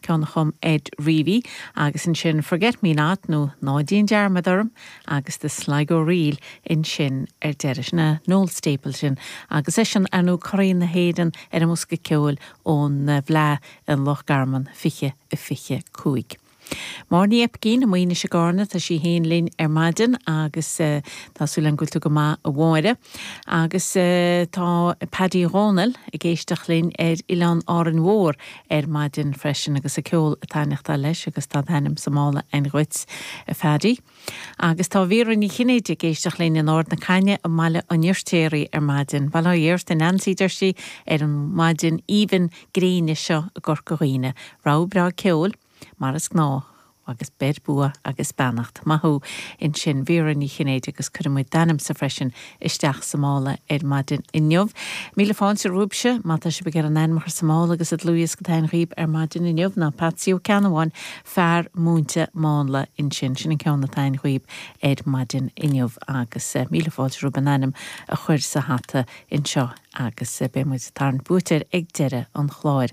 ceann a chum Ed Reavy, agus ansin Forget Me Not nó Ná Déan Dearmad Orm agus The Sligo Reel ansin ar deireadh, ó Noel Stapleton agus eisean ar ndóigh curadh na hÉireann ar an mbosca ceoil ón bhFleadh in Loch Garman 2025. Máire Ní Oibicín, i Maínis i gCárna, tá sí féin linn ar maidin agus tá súil againn go bhfuil tú go maith a Mháire. Agus tá Paddy Dhomhnaill ag éisteacht linn ar Oileán Árainn Mhór ar maidin freisin agus an ceol ag taithneachtáil leis agus tá d'ainm sa mála ann dhuit, a Phaddy. Agus tá Vera Ní Chinnéide ag éisteacht linn in Ard na Caithne i mBaile an Fhirtéaraigh ar maidin. Bail ó Dhia ort a Neansaí deir sí, ar an maidin aoibhinn gréine seo i gCorca Dhuibhne. Rogha breá ceoil, mar is gnáth. agus beir bua agus beannacht. Maith thú ansin Vera Ní Chinnéide agus cuirfimid d'ainmse freisin isteach sa mála ar maidin inniu. Míle fáilte romhaibhse má tá sibh ag iarraidh an t-ainm a chur sa mála agus an dlúthdhiosca atá ann dhaoibh ar maidin inniu ná Patsy Ó Ceannabháin, fear múinte mánla ansin. Sin an ceann atá ann dhaoibh ar maidin inniu agus míle fáilte romhaibh an t-ainm a chur sa hata anseo ar. agus beidh muid ag tarraingt buaiteoir ag deireadh an chláir.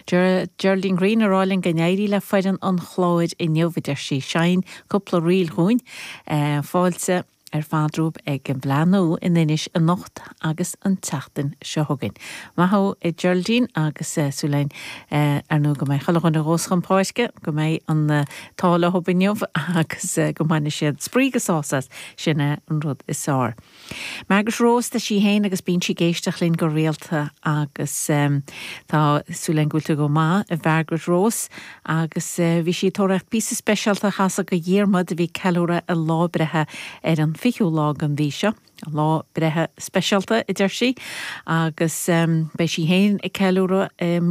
Geraldine Greene ag rá linn go n-éirí le foireann an Chláir inniu, a deir sí. Seinn cúpla ríl dhúinn. Fáilte ar fad romhaibh ag an bhFleadh Nua in Inis anocht agus an tseachtain seo chugainn. Maith thú a Geraldine agus súil againn ar ndóigh go mbeidh chuile dhuine a ghabhfas chun páirce, go mbeidh an t-ádh leo inniu agus go mbaine siad spraoi agus sásamh as, sin é an rud is fearr. Margaret Rose tá sí féin agus bíonn sí ag éisteacht linn go rialta agus tá súil againn go bhfuil tú go maith, a Mhargaret Rose. Agus bhí sí ag tóraíocht píosa speisialta a chasadh go Dhiarmaid a bhí ag ceiliúradh a lá breithe ar an 20ú lá den mhí seo. Lá breithe speisialta, a deir sí. Agus beidh sí féin ag ceiliúradh i mí.